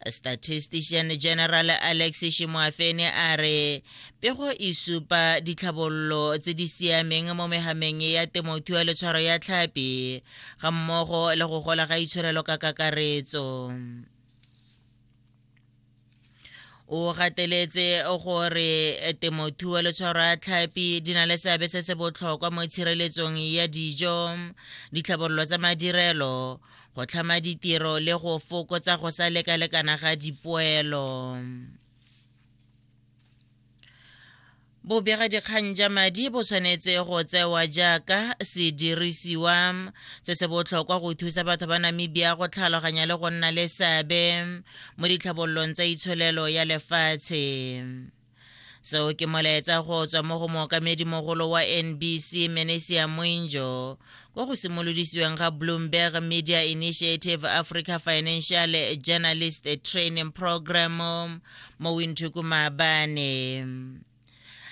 statistician general alex shimoafene a re pego e supa ditlhabololo tse di siameng mo megameng ya temothuo le tshwaro ya tlhapi ga mmogo le go gola ga itshwarelo ka kakaretso o gateletse gore temothuo le tshwaro ya tlhapi di na le seabe se se botlhokwa mo tshireletsong ya dijo ditlhabololo tsa madirelo go tlhama ditiro le go fokotsa go sa lekalekana ga dipoelo bobegadikgang ja madi bo tshwanetse go tsewa jaaka sedirisiwa se se botlhokwa go thusa batho ba namibia go tlhaloganya le go nna le seabe mo ditlhabololong tsa itsholelo ya lefatshe seo ke molaetsa go tswa mo go mookamedimogolo wa nbc menesia moinjo kwa go simolodisiweng ga bloomberg media initiative africa financial journalist training program mo winthuku maabane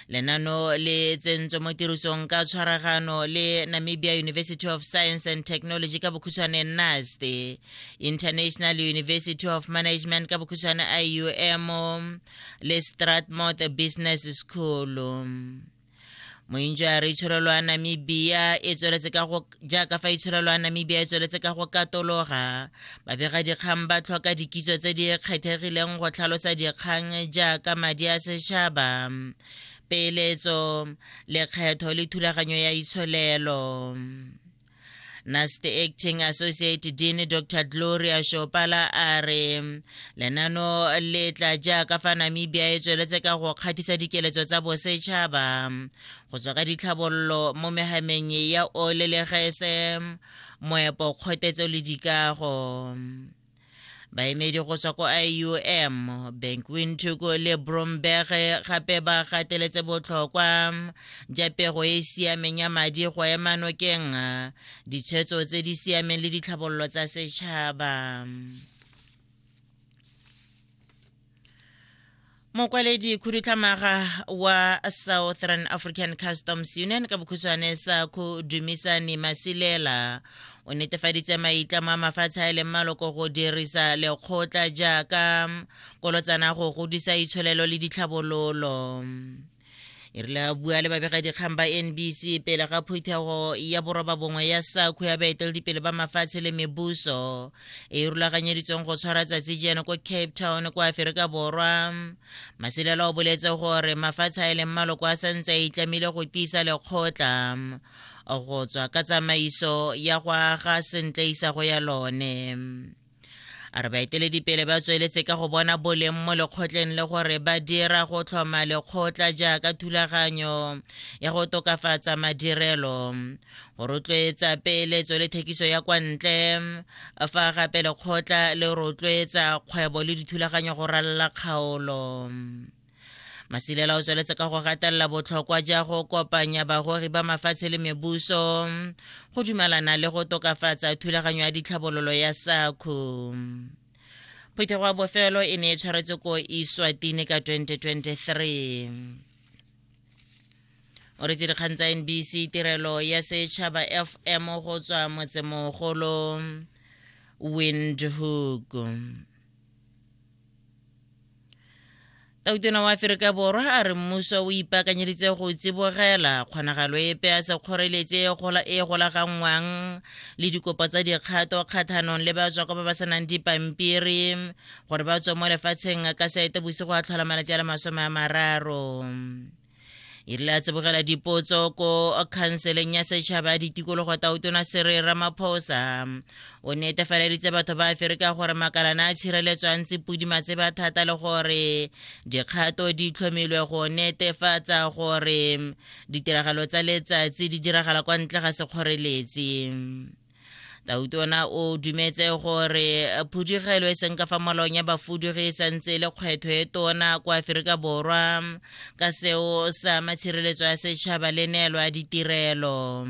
lenano le tsentswe mo tirisong ka tshwaragano le namibia university of science and technology ka bokhutshwane nast international university of management ka bokhutshwane ium le-stratmouth business school mointso a re itshwarelo ya namibia e tsweletse ka go jaaka fa itshwarelo ya namibia e tsweletse ka go katologa babega dikgang ba tlhoka dikitso tse di kgethegileng go tlhalosa dikgang jaaka madi a setšhaba peeletso lekgetho le thulaganyo ya itsholelo Nasty Acting Associate Dean Dr. Gloria Shopala a re lenano le tla jaaka fa Namibia e tsweletse ka go kgathisa dikeletso tsa bosetšhaba go tswa ka ditlhabololo mo megameng ya ole le gese moepo kgotetso le dikago baemedi go tswa ko iom bank windhoek le bromberg gape ba gateletse botlhokwa ja pego e e siameng ya madi go ema nokeng ditshwetso tse di siameng le ditlhabololo tsa setšhaba mokwaledi khudutlhamaga wa southern african customs union ka bokhutshwane sa go dumisane masilela o netefaditse maitlamo a mafatshe a e leng maloko go dirisa lekgotla jaaka kolotsana go godisa itsholelo le ditlhabololo e rile a bua le babegadikgang ba nbc pele ga phuthego ya boroba bongwe ya sakhu ya baeteledipele ba mafatshe le mebuso e e rulaganyeditsweng go tshwara tsatsi jeno ko cape town kwa aferika borwa maselela o boletse gore mafatshe a e leng maloko a santse a itlamile go tiisa lekgotla go tswa ka tsamaiso ya go aga sentle isago ya lone a re baeteledipele ba tsweletse ka go bona boleng mo lekgotleng le gore ba dira go tlhoma lekgotla jaaka thulaganyo ya go tokafatsa madirelo go rotloetsa peeletso le thekiso ya kwa ntle fa gape lekgotla le rotloetsa kgwebo le dithulaganyo go ralala kgaolo masilela o tsweletse ka go gatelela botlhokwa ja go kopanya bagori ba mafatshe le mebuso go dumalana le go tokafatsa thulaganyo ya ditlhabololo ya sakhu phetogo ya bofelo e ne e tshwaretse ko iswatini ka 2023 o retse dikgang tsa nbc tirelo ya setšhaba fm go tswa motsemogolo windhoek tautona wa aferika borwa a re mmuso o ipaakanyeditse go tsibogela kgonagalo epe a sa kgoreletse e, e golaganngwang le dikopo tsa dikgato kgathanong le ba tswako ba ba senang dipampiri gore ba tswe mo lefatsheng ka saete bosigo a tlhola malatsi a le masome a mararo e rile a tsebogela dipotso ko khanseleng ya setšhaba ya ditikologo tautona sere ramaphosa o netefaleditse batho ba aferika gore makalana a tshireletswa ntse pudima tseba thata le gore dikgato di tlhomilwe go netefatsa gore ditiragalo tsa letsatsi di diragala kwa ntle ga sekgoreletsi tautona o dumetse gore phudugelo e seng ka fa molong ya bafudugi e santse e le kgwetho e tona kwa aferika borwa ka seo sa matshireletso ya setšhaba le neelo ya ditirelo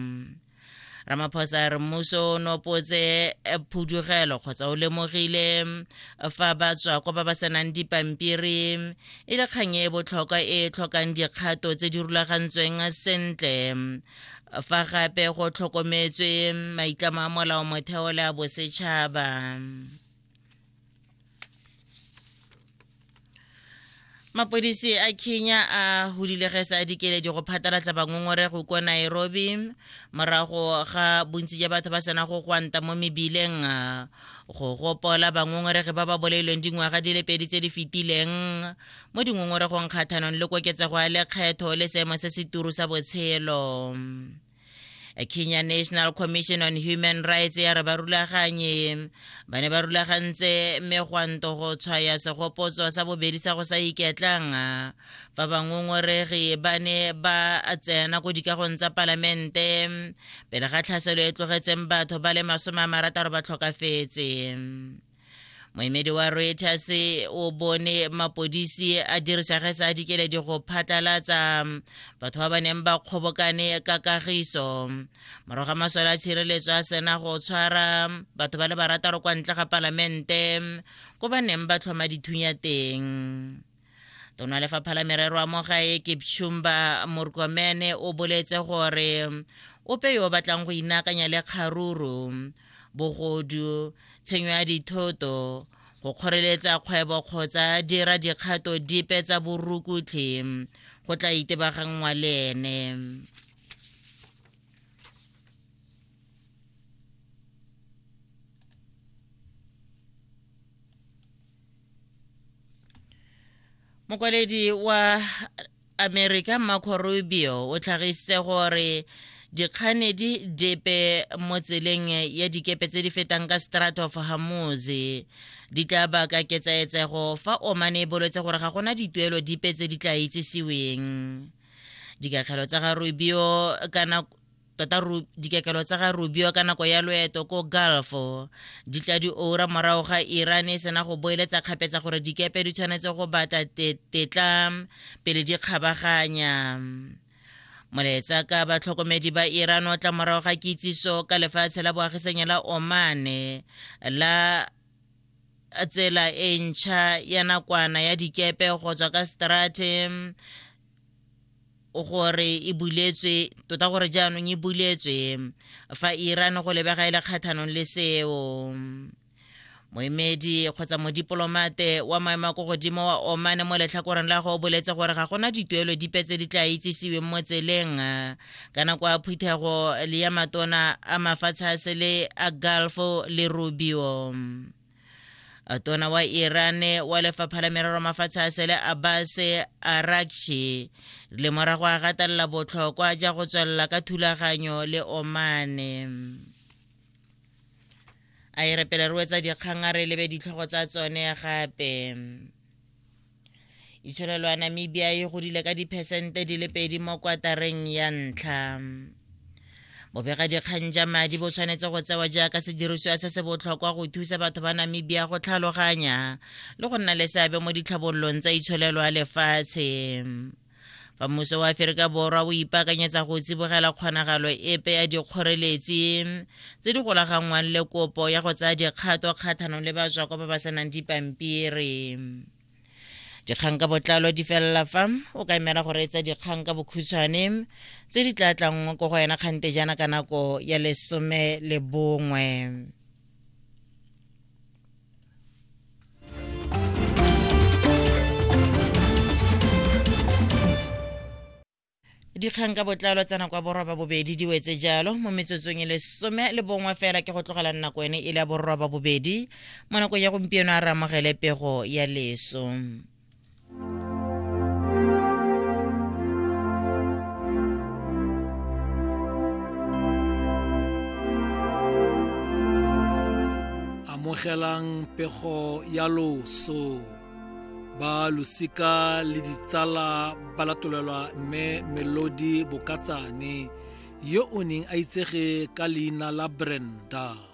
ramaphosa re mmuso o nopotse eh, phudugelo kgotsa o lemogile eh, fa ba tswa kwa ba ba senang dipampiri e le kgang e botlhokwa e tlhokang dikgato tse di rulagantsweng sentle fa gape go tlhokometswe maitlamo a molao motheo le a bosetšhaba mapodisi a kenya a hudile ge sa dikeledi go phatalatsa bangongorego ko nairobi morago ga bontsi ja batho ba sena go gwanta mo mebileng go gopola bangongorege ba ba bolailweng dingwaga di le pedi tse di fetileng mo dingongoregong kgathanong le koketsego ya lekgetho le seemo se seturu sa botshelo kenya national commission on human rights ya re ba rulaganye ba ne ba rulagantse megwanto go tshwaya segopotso sa bobedi sa go sa iketlang fa bangongoregi ba ne ba tsena ko dikagong tsa palamente pele ga tlhaselo e tlogetseng batho ba le masome a marataro ba tlhokafetse moemedi wa reuters o bone mapodisi a dirisa ge sa dikeledi go phatlalatsa batho ba ba neng ba kgobokane ka kagiso morago ga masole a tshireletso a sena go tshwara batho ba le barataro kwa ntle ga palamente ko ba neng ba tlhoma dithunya teng tona lefapha la merero a mo gae ke pshumba morkomene o boletse gore ope yo o batlang go inakanya le kgaruru bogodu tshenyo ya dithoto go kgoreletsa kgwebo kgotsa dira dikgato dipe tsa borukutlhi go tla itebaganngwa le ene mokwaledi wa america marco rubio o tlhagisitse gore dikganedi depe mo tseleng ya dikepe tse di fetang ka strat of hamoz di tla baka ketsaetsego fa omane e boletse gore ga gona dituelo dipe tse di tla itsesiweng dikatlhelo tsa ga rubio kana tota dikekelo tsa ga rubio ka nako ya loeto ko gulf di tla di oura morago ga iran e sena go boeletsa kgapetsa gore dikepe di tshwanetse go batla tetla pele di kgabaganya moletsa ka batlhokomedi ba iran o tla morago ga kitsiso ka lefatshe la boagisanyo la omane la tsela e ntšha ya nakwana ya dikepe go tswa ka strate gore e buletswe tota gore jaanong e buletswe fa iran go lebega e le kgathanong le seo moemedi kgotsa modipolomate wa maemo a ko godimo wa omane mo letlhakoreng la go o boletse gore ga gona dituelo dipe tse di tla itsisiweng mo tseleng ka nako ya phuthego le ya matona a mafatshe a sele a galfo le rubio tona wa iran wa lefapha la merero mafatshe a sele abbas arakshi le morago a gatelela botlhokwa ja go tswelela ka thulaganyo le omane a e re pele re wetsa dikgang a re lebe ditlhogo tsa tsone gape itsholelo ya namibia e godile ka diphesente di le pedi mo kwatareng ya ntlha bobegadikgang ja madi bo tshwanetse go tsewa jaaka sedirisiwa se se botlhokwa go thusa batho ba namibia go tlhaloganya le go nna le seabe mo ditlhabololong tsa itsholelo ya lefatshe fa mmuso wa aferika borwa o ipaakanyetsa go tsibogela kgonagalo epe ya dikgoreletsi tse di golaganngwang le kopo ya go tsaya dikgato kgathanong le batswako ba ba senang dipampiri dikgang ka botlalo di felela fa o ka emela go reetsa dikgang ka bokhutshwane tse di tla tlangwa ko go yena kgante jaana ka nako ya lesome le bongwe dikgang ka botlalo tsa nako ya borwa bobedi di wetse jalo mo metsotsong e lesome le bongwe fela ke go tlogela nako ene e le ya borwa bobedi mo nakong ya gompieno a re amogele pego ya leso amogelang pego ya loso ba losika le ditsala ba latolelwa mme melodi bokatsane yo o neng a itsege ka leina la brenda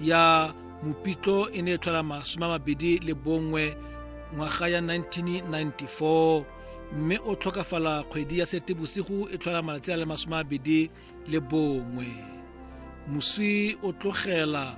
ya mopitlo e ne e tlhola masome a mabedi le bongwe ngwaga ya 1994 mme o tlhokafala kgwedi ya setebosigo e tlhola malatsi a le masome a mabedi le bongwe moswi o tlogela